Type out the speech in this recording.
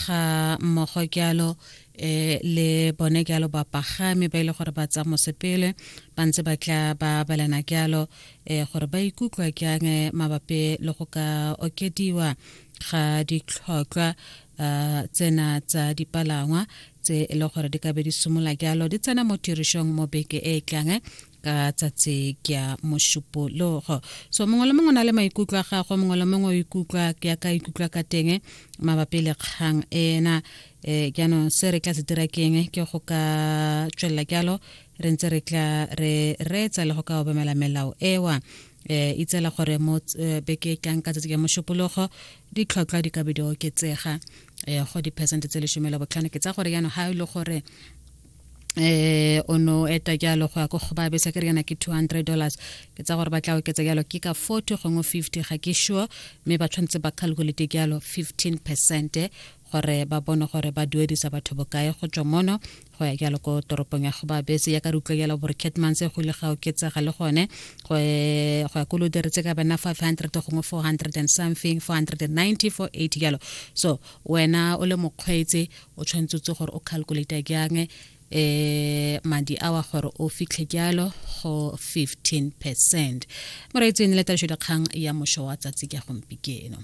ga mmogo kealo um eh, le bone kealo bapagami ba ile e gore ba tsa mosepele ba ntse ba tla ba balana kealo um eh, gore ba ikutlwa keang eh, mabapi le go ka okediwa ga ditlhotlwa um tsena tsa dipalangwa tse e le gore di ka be di simolola jalo di tsena mo tirišong mo beke e e tlang ka tsatsi ke ya mošupologo so mongwe le mongwe na le maikutlo a gagwe mongwe le mongwe o ikutlwa ke ya ka ikutlwa ka teng mabapi le kgang ena um jaanong se re tla se dira keng ke go ka tswelela jalo re ntse re tla re reetsa le go ka obamela melao ewa eh itsela gore mo eh, beke tlang ka tsatsi ya mošupologo ditlhotlhwa di ka be di oketsega um go diphesente tse lesome la botlhano ke tsa gore jaanong ga e le gore eh o no eta jalo go ya ko go ba besa ke rena ke 200 dollars ke tsa gore ba tla oketsa jalo ke ka 40 gongwe 50 ga ke sure mme ba tshwanetse ba calculate jalo 15 percent gore ba bone gore ba duedisa batho bokae go tswa mono go ya jalo ko toropong ya go ba bese ya ka re utlwa jalo gore catmans go ile ga oketsega le gone go ya ko lo diretse ka bana 500 gongwe 400 and something 490 480 jalo so wena o le mokgweetsi o tshwanetse o tse gore o calculate jang eh madi a wa gore o fitlhe jalo go 15 percent moreetso e ne le tabišo dikgang ya mošo wa tsatsi ka gompikeno